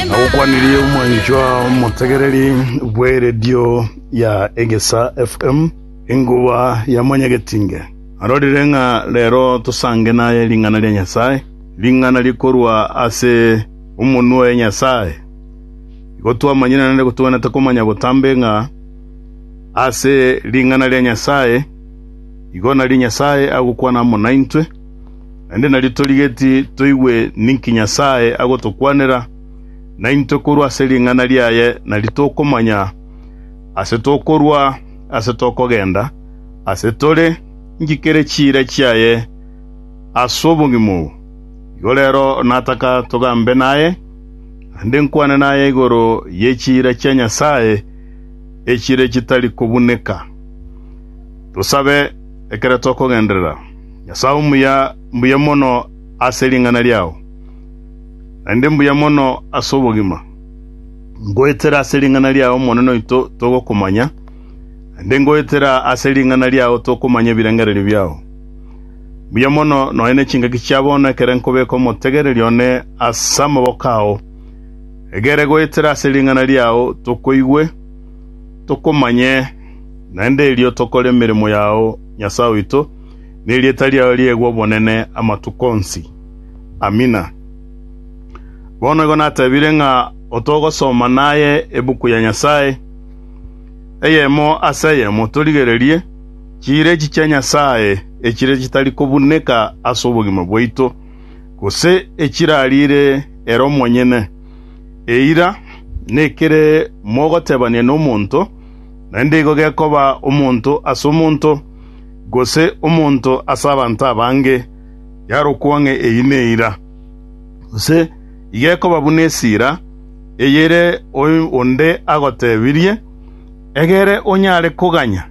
Nagokwanirie omwanchwa omotegereri bw'eredio ya Egesa FM, enkuba ya Mwanyagetinge. Narorire ng'a rero tosange naye ring'ana ria Nyasae, ring'ana rikorwa ase omonwa oye Nyasae. Igo twamanyire naende togwenerete komanya botambe ng'a ase ring'ana ria Nyasae igo nario Nyasae agokwana amo naintwe, naende nario torigeti toigwe ninki Nyasae agotokwanera, na intwe korwa ase ring'ana riaye nario tokomanya aase tokorwa, aase tokogenda, aase tore, inki kere chiira chiaye ase obongima obo. Igo rero nataka togambe naye, naende nkwane naye igoro ye chiira chia Nyasae, echire chitari kobuneka. Tosabe, ekero tokogenderera. Nyasae omuya, mbuya mono ase ring'ana riao, naende mbuya mono ase obogima. Ngoetera ase ring'ana riao Omonene oito togokomanya, naende ngoetera ase ring'ana riao tokomanya ebirengererio biao. Mbuya mono nonya ne chingaki chia bono ekero nkobeka omotegereria one ase amaboko ao. Egere goetera ase ring'ana riao tokoigwe, tokomanye, naende erio tokore emeremo yao, Nyasae oito, nerieta riao riegwe obonene amatuko onsi. Amina. Bono igo natebire ng'a otogosoma naye ebuku ya Nyasae, eyemo ase eyemo, torigererie chiirechi chia Nyasae echire chitari kobuneka ase obogima bwaito, gose echirariire ere omonyene. Eira, nekere mogotebania nomonto, naende igo gekoba omonto ase omonto, gose omonto ase abanto abange, yarokwa ng'a eyio neira. Gose igo ekoba buna esira, eyere onde agotebirie, egere onyare koganya.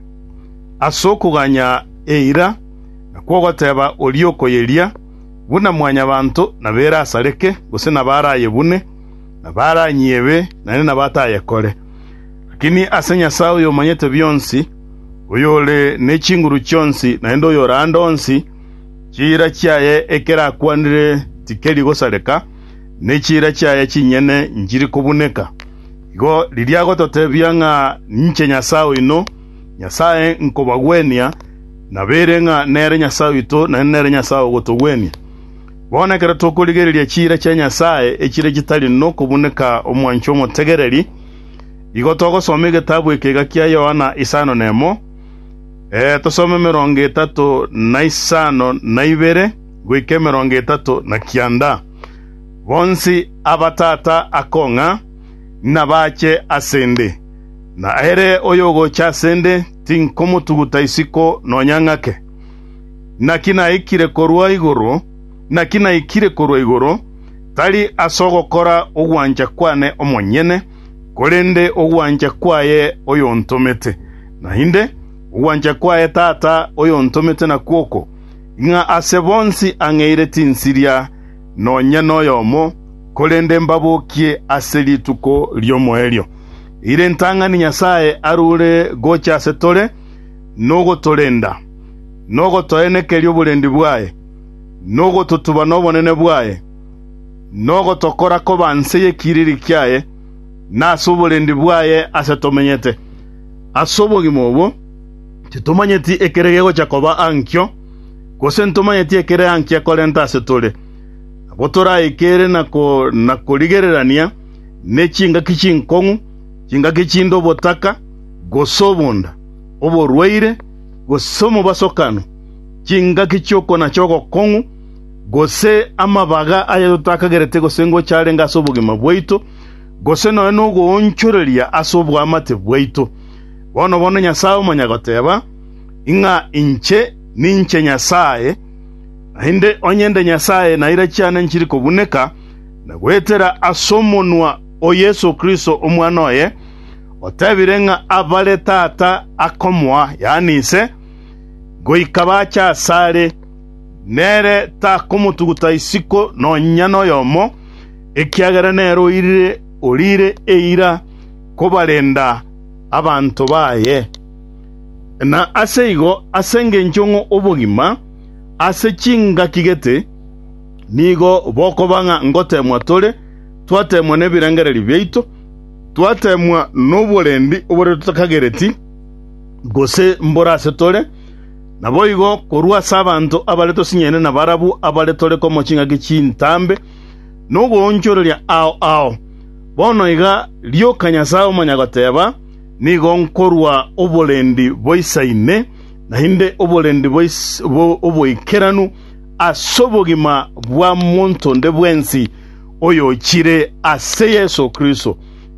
Ase okoganya eira, nakwo ogoteba oria okoyeria, buna mwanyabanto nabere asareke, gose nabare ayebune, nabare anyiebe, naende nabate ayekore. Lakini ase Nyasae oyomanyete bionsi, oyore ne chinguru chionsi, naende oyore ande onsi, chiira chiaye ekerakwanire tikeri gosareka, ne chiira chiaye chinyene nchiri kobuneka. Igo riria agototebia ng'a ninche Nyasae oino, Nyasae nkobagwenia, nabeire ng'a nere Nyasae oito, naende nere Nyasae ogotogwenia. Bono ekero tokorigereria chiira chia Nyasae, echire chitari nokobuneka omwancho omotegereri, igo togosoma egetabu ekega kia Yohana isano nemo, ee, tosome emerongo etato na isano na ibere goika emerongo etato na kianda. Bonsi aba tata akong'a, nabache ase 'nde, na ere oyogocha ase 'nde tinkomotuguta isiko nonya ng'ake. Naki naikire korwa igoro, naki naikire korwa igoro, tari as'ogokora ogwancha kwane omonyene, korende ogwancha kwaye oyontomete. Naende, ogwancha kwaye Tata oyontomete nakwo oko, ng'a ase bonsi ang'eire chinsiria, nonya noyomo, korende mbabokie ase rituko ri'omoerio, ere ritang'ani Nyasae arure gocha ase tore, nogotorenda, nogotoenekeria oborendi bwaye, nogototuba nobonene bwaye, nogotokora koba nse y'ekiriri kiaye, na ase oborendi bwaye ase tomenyete. Ase obogima obo, Titomanyeti ekere gegocha koba ankio, gose ntomanyeti ekere ankia korenta asetore, abwo toraikere na korigererania ne chingaki chinkong'u, chingaki chinde obotaka, gose obonda, oborwaire, gose omobasokano, chingaki chi'okona chi'ogokong'u, gose amabaga aya totakagereti gose ngocha arenge ase obogima bwaito, gose nonya nogoonchoreria ase oboamate bwaito. Bono-bono Nyasae omonyagoteba, Ing'a inche ninche Nyasae, naende onye nde Nyasae naira chiane nchiri kobuneka, na goetera as'omonwa o Yeso Kristo Omwana oye, otebire ng'a abare Tata akomoa, yaani Ise, goika bache asare, nere takomotuguta isiko nonya noyomo, ekiagera nere oirire, orire eira. kobarenda abanto baye, na ase igo as'engencho ng'a obogima ase chingaki gete, nigo bokoba ng'a ngoteemwa tore, twateemwa nebirengererio biaito, twateemwa noborendi obore totakagereti, gose mboro ase tore, naboigo korwa ase abanto abare tosinyaine nabarabwo abare tore komo chingaki chintambe, nogoonchoreria ao ao. Bono iga rioka Nyasae omonyagoteeba, Nigo nkorua oborendi boisa ime, naende oborendi oboikeranu ase obogima bwa monto onde bwensi oyochire ase Yeso Kristo.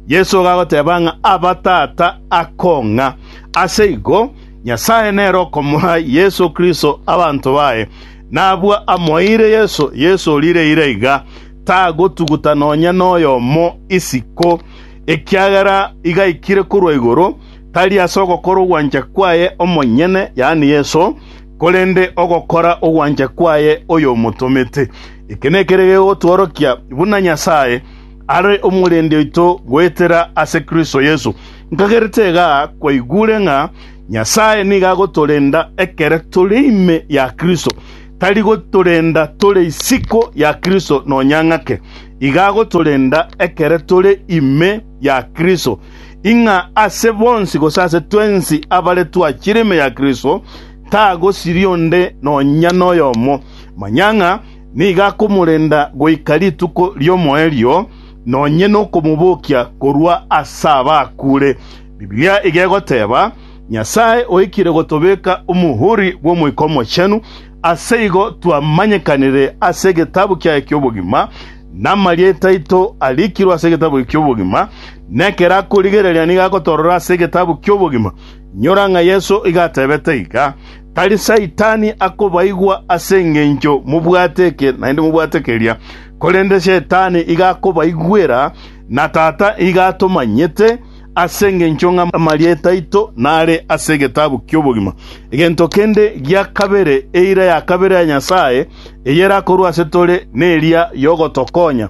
Yeso igo agoteeba ng'a aba tata akong'a. Ase igo, Nyasae nere okomoa Yeso Kristo abanto baye, nabwo amoeire Yeso, Yeso oriire ira iga. tagotuguta nonya noyomo isiko, ekiagera igaikire korwa igoro, tari ase ogokora ogwancha kwaye omonyene, yaani Yeso, korende ogokora ogwancha kwaye oyomotomete. Eke nekere gegotworokia buna Nyasae are omorendi oito goetera ase Kristo Yeso. Nkagerete iga kwaigure ng'a Nyasae nigo agotorenda ekero tore ime ya Kristo, Tari gotorenda tore isiko ya Kristo nonya ng'ake, iga agotorenda ekere tore ime ya Kristo, ing'a ase bonsi gose ase twensi abare twachire ime ya Kristo tagosiria onde nonya noyomo. Manya ng'a nigo akomorenda goika rituko ri'omoerio, nonye nokomobokia korwa ase abakure. Bibilia iga egoteba, Nyasae oikire gotobeka omohuri bw'Omoika Omochenu, ase igo twamanyekanire ase egetabu kiaye ki'obogima, namarieta aito arikirwe ase egetabu eke ki'obogima, nekero akorigereria nigo agotorora ase egetabu ki'obogima. Inyora ng'a Yeso igo atebete iga, Tari Saitani akobaigwa ase engencho mobwate eke naende mobwate keria, korende Shetani iga akobaigwera, na Tata iga atomanyete, Ase engencho ng'a amarieta aito nare ase egetabu ki'obogima, egento kende gia kabere, eira ya kabere ya Nyasae eyerakorwa ase tore neria yogotokonya.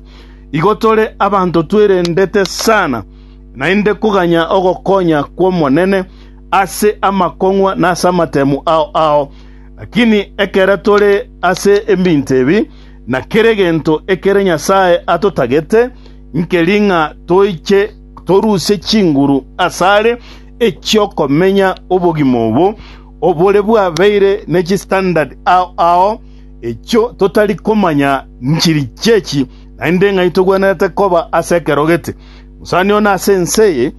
Igo tore abanto twerendete sana naende koganya ogokonya kw'Omonene ase amakong'wa na ase amatemu ao ao. Lakini ekero tore ase ebinto ebi na kere gento ekere Nyasae atotagete, nkeri ng'a toiche torusie chinguru asare echi'okomenya obogima obo obore bwabeire ne chistandard ao ao, echio totari komanya nchiri chi'echi, naende ng'ai togwenerete koba ase ekero gete. Mosani one ase ense eye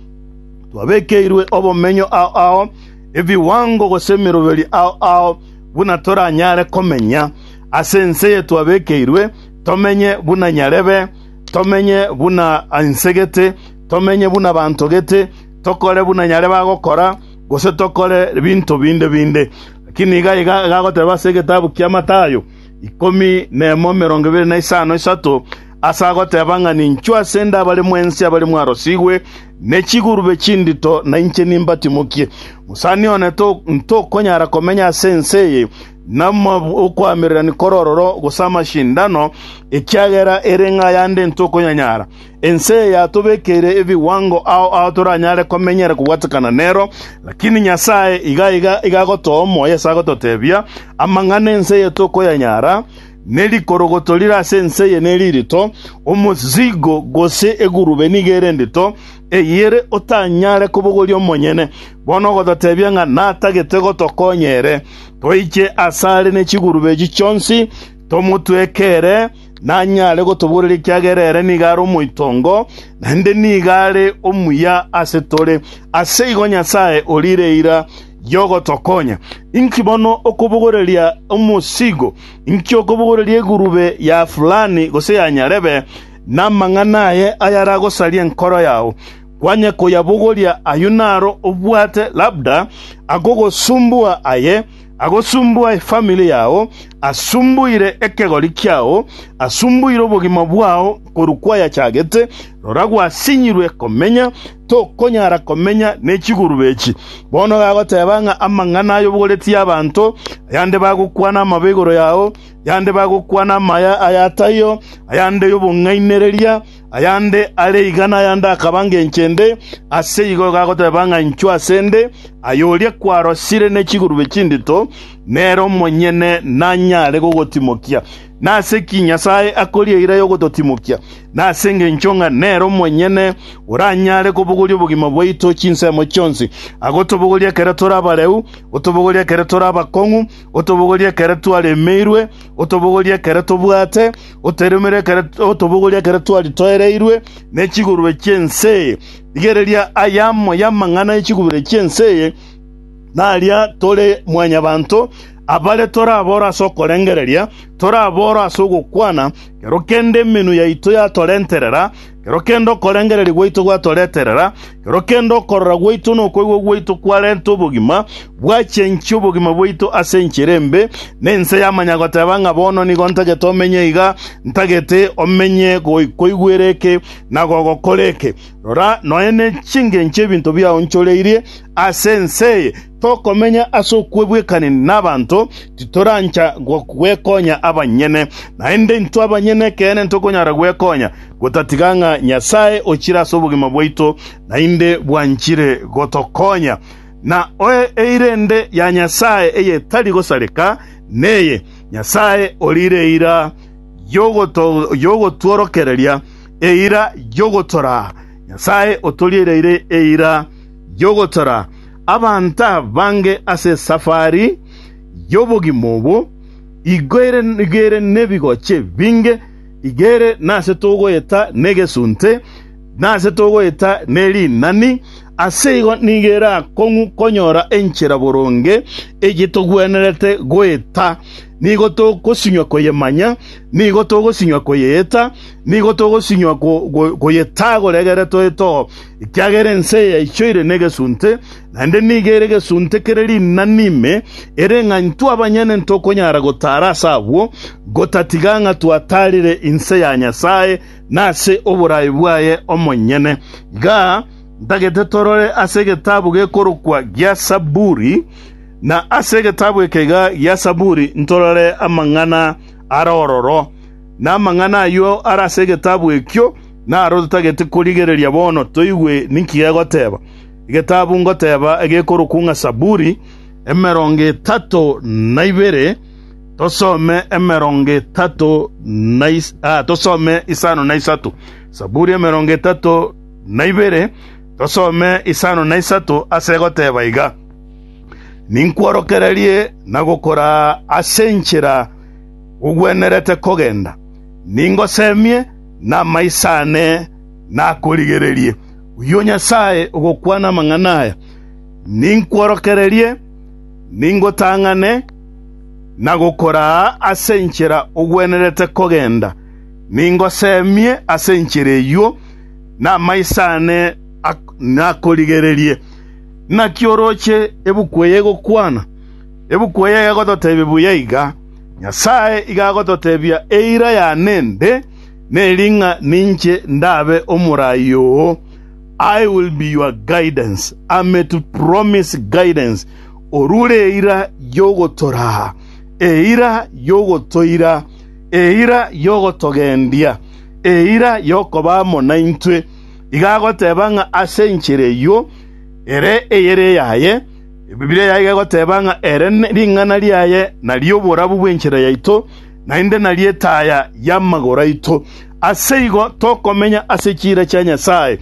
twabekeirwe obomenyo ao ao, ebiwango gose emeroberi ao ao, buna toranyare komenya ase ense eye twabekeirwe, tomenye buna nyarebe, tomenye buna inse gete, tomenye buna abanto gete, tokore buna nyare bagokora, gose tokore binto binde binde. Lakini iga iga egagoteba ase egetabu kia Mathayo ikomi na emo emerongo ebere na isano isato, ase agoteba ng'a ninchwe ase inde abare mwensi abare mwarosigwe ne chigurube chindito, na inche nimbatimokie. Mosani one to- ntokonyara komenya ase ense eye, namokwamerera nikore ororo gose amashindano, ekiagera ere ng'a yande intwe okonyanyara. Ense eye yatobekeire ebiwango ao ao toranyare komenyera kobwatekana nero, lakini Nyasae iga iga iga agotoa omoyo ase agototebia, Amang'ana 'ense eye tokoyanyara, ne rikorogoto rire ase ense eye neri rito, omosigo gose egurube nigo ere ndito, eyere otanyare kobogoria omonyene. Bono ogototebia ng'a natagete gotokonya ere. Toiche asare ne chigurube echi chionsi, tomotweke ere, nanyare gotoboreria ekiagera ere nigo are omoitongo, naende nigo are omuya ase tore. Ase igo Nyasae orire eira y'ogotokonya. Inki bono okobogoreria omosigo? Inki okobogoreria egurube ya fulani gose ya nyarebe, namang'ana aye ayaragosarie enkoro yao? Kwanye koyabogoria ayio naro obwate labda akogosumbua aye, agosumbua efamili yao, asumbuire ekegori kiao, asumbuire obogima bwao korwa kwayachagete, rora gwasinyirwe komenya, tokonyara komenya ne chigurube echi. Bono gagoteba ng'a amang'ana ayobogoretie abanto, ayande bagokwana amabe igoro yao, yande bagokwana amaya ay'ataiyo, ayande y'obong'ainereria, Ayande are iga nayande akaba ngencho ende, ase igo gagoteba ng'a inchuo ase ende, aye oria kwarosire ne chigurube chindito, nere omonyene nanyare gogotimokia. Nase ki Nyasae akoria eira y'ogototimokia? Nase engencho ng'a nere omonyene oranyare kobogoria obogima bwaito chinsemo chionsi, agotobogoria ekero tore abareu, otobogoria ekero tore abakong'u, otobogoria ekero twaremeirwe, otobogoria ekero tobwate, Oteremere ekero otobogorie ekero twari toereirwe ne chigurube chi'ense eye. Rigereria aya amo y'amang'ana e chigurube chi'ense eye, naria tore mwanyabanto, abare torabore ase okorengereria, torabore ase ogokwana, ekero kende emenwa yaito yatorenterera, Ekero kende okorengereria gwaito gwatoreterera, ekero kende okorora gwaito na okoigwa gwaito kwarenta obogima, gwachenchia obogima bwaito ase enchera embe, na ense yamanya goteba ng'a bono nigo ntagete omenye iga, ntagete omenye goikoigwera eke na gogokora eke. Rora, nonya ne chingencho ebinto biaonchoreirie ase ense eye. Tokomenya ase okwegwekanini nabanto, titorancha gwekonya abanyene. Naende intwe abanyene ekeene ntokonyara gwekonya, gotatiga ng'a Nyasae ochire ase obogima bwaito naende bwanchire gotokonya. Na eirende ya Nyasae eyetari gosareka neye, Nyasae oriire eira y'ogotworokereria, eira y'ogotoraa. Nyasae otoriireire eira. y'ogotora abanto abange ase esafari y'obogima obo, igo ere, igo ere nebigochi ebinge, igo ere nase togoeta negesunte, nase togoeta nerinani, ase igo nigo erakong'u konyora enchera boronge eyio togwenerete goeta. Nigo togosinywa koyemanya, nigo togosinywa koyeeta, nigo togosinywa ko, ko, koyetagora egere toetoo. Ekiagera ense eye yaichoire negesunte, naende nigo ere egesunte kere rinani ime, ere ng'a intwe abanyene ntokonyara gotaara ase abwo, gotatiga ng'a twataarire inse ya Nyasae na ase oboraai bwaye omonyene. Iga ntagete torore ase egetabu gekorokwa gia Zaburi, na ase egetabu eke iga gia Zaburi ntorore amang'ana are ororo, na amang'ana ayio are ase egetabu ekio, Naro totagete korigereria bono toigwe ninki gegoteba egetabu ngoteba egekorokwa ng'a Zaburi, emerongo etato na ibere, tosome emerongo etato na is- ah, tosome isano na isato. Zaburi emerongo etato na ibere, tosome isano na isato ase egoteba iga, Ninkworokererie na gokoraa ase enchera ogwenerete kogenda, ningosemie namaiso aane nakorigererie. Oyio Nyasae ogokwana amang'ana aya, ninkworokererie, ningotang'ane, na gokoraa ase enchera ogwenerete kogenda, ningoseemie ase enchera eyio, namaiso aane nakorigererie. Naki oroche ebuku eye egokwana? Ebuku eye egototebia buya iga. Nyasae iga agototebia, Eira ya nende neri ng'a ninche ndabe omoraai oo, I will be your guidance, am to promise guidance, orure eira y'ogotoraa, eira y'ogotoira, eira y'ogotogendia, eira y'okoba amo naintwe. Iga agoteba ng'a ase enchera eyio ere eyere eyaye, Ebibilia yaye egoteba ng'a ere ring'ana riaye nario oborabu bw'enchera yaito, naende nario etaaya y'amagoro aito. Aseigo tokomenya ase chiira chia Nyasae,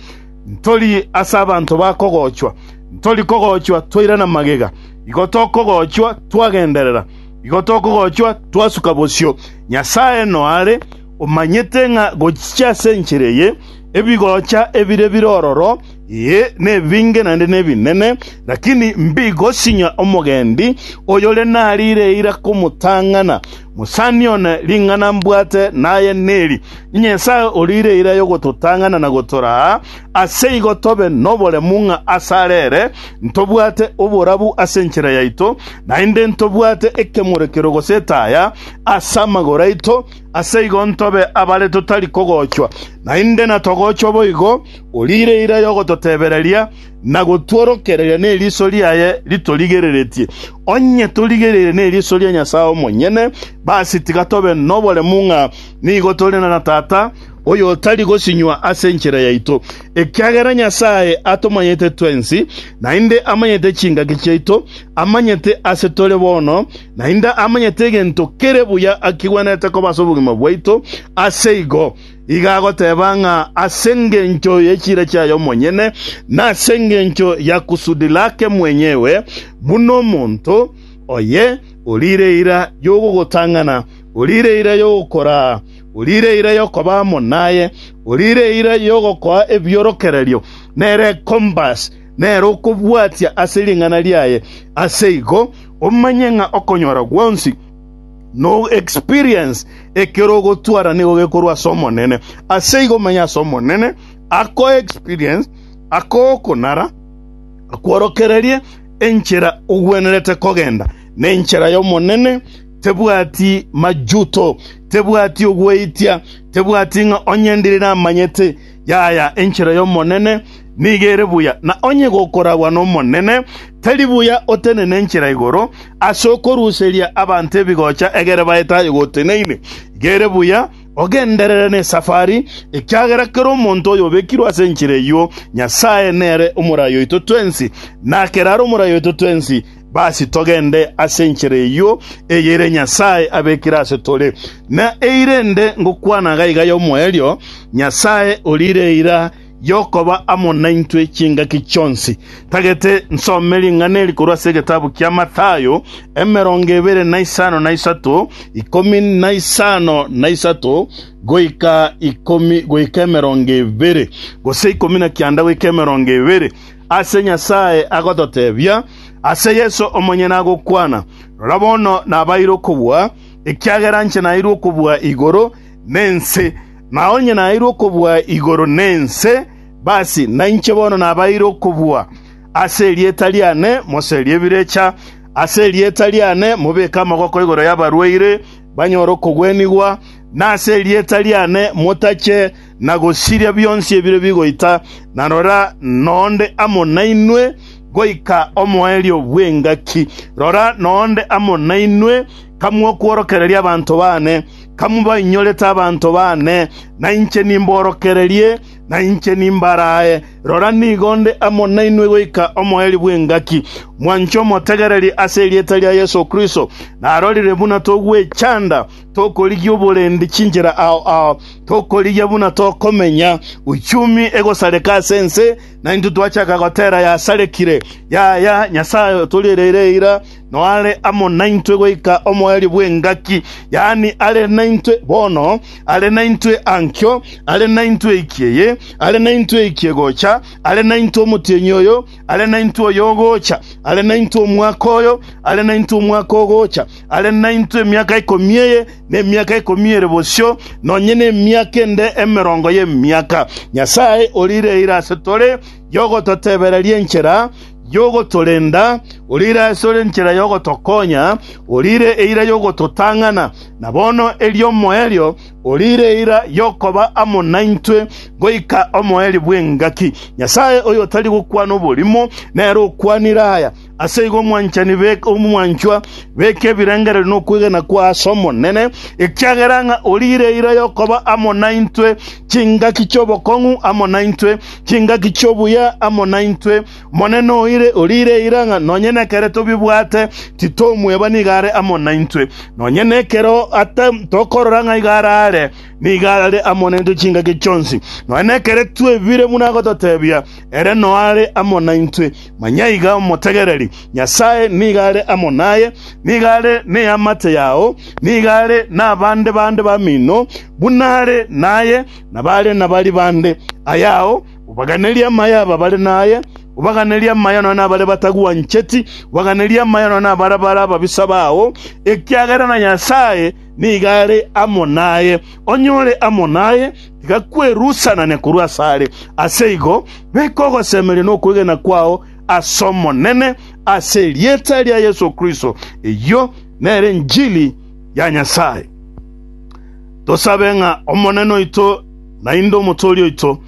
ntori ase abanto ba kogochwa. Ntori kogochwa twairana magega, igo tokogochwa twagenderera, igo tokogochwa twasuka bosio. Nyasae noare, omanyete ng'a gochicha ase enchera eye ebigocha ebire bire ororo Ee, nebinge naende nebinene, lakini mbigosinyia omogendi oyore nariire eira komotang'ana. Mosani one, ring'ana mbwate naye neri, Nyasae oriire eira y'ogototang'ana na gotoraa, aseigo tobe noboremu ng'a asare ere ntobwate oborabu ase enchera yaito, naende ntobwate ekemorekero gose etaya as'amagoro aito, Aseigo ntobe abare totari kogochwa, naende natogochwa boigo, oriire eira y'ogototebereria na gotworokereria neriso riaye ritorigereretie. Onye torigereire neriso ria Nyasae omonyene, basi tiga tobe noboremu ng'a nigo tore na Tata oyotari gosinywa ase enchera yaito, ekiagera Nyasae atomanyete twensi, naende amanyete chingaki chiaito, amanyete ase tore bono, Naende amanyete egento kere buya akigwenerete koba ase obogima bwaito, aseigo iga agoteba ng'a ase engencho ye chiira chiaye omonyene, na ase engencho ya kusudi lake mwenyewe, buna omonto oye orire eira y'ogogotang'ana, orire eira y'ogokoraa, orire eira y'okoba amo naye, orire eira y'ogokoa ebiorokererio, nere compass, nere okobwatia ase ring'ana riaye, aseigo omanye ng'a okonyora gwonsi no experience ekero ogotwara nigo gekorwa ase Omonene. Ase igo omanye ase Omonene ako experience ako okonara akworokererie enchera ogwenerete kogenda na enchera y'Omonene tebwati majuto tebwati ogweitia tebwati ng'a onye ndire namanyete Yaya, enchera y'Omonene nigo ere buya, na onye gokoragwa n'Omonene, tari buya otenene enchera igoro ase okoruseria abanto ebigocha egere baete aye goteneine. Igo ere buya ogenderere nesafari, ekiagera kera omonto oyobekirwe ase enchera eyio Nyasae nere omorai oito twensi, na kerare omorai oito twensi. Basi togende ase enchera eyio eyere Nyasae abekire ase tore, na eira ende ngokwana iga iga y'omoerio, Nyasae oriire eira y'okoba amo naintwe chingaki chionsi. Tagete nsome ring'ana eri korwa ase egetabu kia Mathayo, emerongo ebere na isano na isato, ikomi na isano na isato goika ikomi goika emerongo ebere, gose ikomi na kianda goika emerongo ebere. ase Nyasae agototebia ase Yeso omonyene agokwana, Rora bono nabaeire okobua, ekiagera inche naeirwe okobua igoro nense, na onye naeirwe okobua igoro nense, basi nainche bono nabaeire okobua. Ase erieta riane moserie ebirecha, ase erieta riane mobeke amaboko igoro y'abarwaire banyore okogwenigwa, na ase erieta riane motache na gosiria bionsi ebire bigoita, na rora, nonde amo nainwe goika omoerio bw'engaki. Rora, nonde amo nainwe kamwokworokereria abanto baane, kamobainyorete abanto baane, na inche nimborokererie, na inche nimbaraae. Rora, nigo nde amo nainwe goika omoerio bw'engaki. Mwanche omotegereri ase erieta ria Yeso Kristo, narorire buna togwechanda, Tokorigia oborendi chinchera ao ao, tokorigia buna tokomenya. Uchumi egosareka ase ense, na intwe twachaka gotera yasarekire. Yaya, Nyasae otoriireire eira, noare amo naintwe goika omoerio bw'engaki, yaani are naintwe bono, are naintwe ankio, are naintwe eiki eye, are naintwe eiki egocha, are naintwe omotienyi oyo, Are naintwe oyogocha, are naintwe omwaka oyo, are naintwe omwaka ogocha, are naintwe emiaka ikomi eye, na emiaka ikomi ere bosio, nonye nemiaka ende emerongo y'emiaka. Nyasae orire ira ase tore yogototebereria enchera yogotorenda, orire ase tore enchera yogotokonya, orire eira yogototang'ana, na bono erio omoerio Orire eira y'okoba amo naintwe goika omoerio bw'engaki. Nyasae oyotari gokwana oborimo nere okwanire aya. Aseigo omwanchani beke omwanchwa, beke ebirengererio nokwegena kwa ase Omonene, ekiagera ng'a orire eira y'okoba amo naintwe chingaki chi'obokong'u amo naintwe, chingaki chi'obuya amo naintwe, Monene oire, oriire eira ng'a nonye nekere tobibwate titomweba nigo are amo naintwe. Nonye nekero ata tokorora ng'a igo araare, nigo are amo naintwe chingaki chionsi. Nonye nekere twebire buna agototebia, ere noare amo naintwe. Manya iga omotegereri, Nyasae nigo are amo naye, nigo are neamate yao, nigo are nabande bande bamino buna are naye, nabare nabari bande ayao, Obaganerie amaya aba bare naye, obaganerie amaya nonya nabare batagwancheti, obaganerie amaya nonya nabare bare ababisa bao, ekiagera na Nyasae nigo are amo naye. Onye ore amo naye, tiga kwerusanania korwa asare. Ase igo, beka ogosemeria na okwegena kwao ase Omonene, ase erieta ria Yeso Kristo. Eyio nere enchili ya Nyasae. Tosabe ng'a Omonene oito Naende Omotoori oito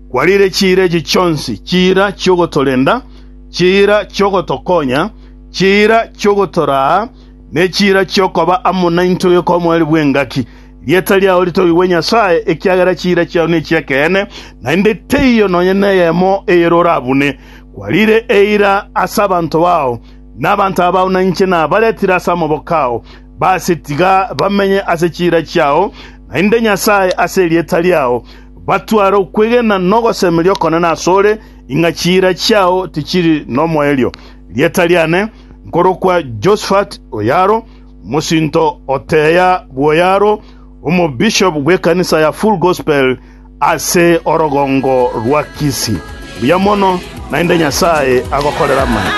kwariire chiira echi chionsi, chiira chi'ogotorenda, chiira chi'ogotokonya, chiira chi'ogotoraa, ne chiira chi'okoba amo naintwe goika omoerio bw'engaki. Rieta riao ritogigwe Nyasae, ekiagera chiira chiao nechi'ekeene, naende teiyo nonya neyemo eyere orabune. Kwariire eira ase abanto bao, na abanto abao nainche nabaretire ase amaboko ao. Base tiga bamenye ase chiira chiao, naende Nyasae, ase erieta riao, batware okwegena na ogosemeria okonene asore, ing'a chiira chiao tichiri nomoerio. Rieta riane nkorokwa Josphat Oyaro, mosinto o Teya bw'Oyaro, omobishop bw'ekanisa ya Full Gospel ase orogongo rwa Kisii. Buya mono, naende Nyasae agokorere amaya.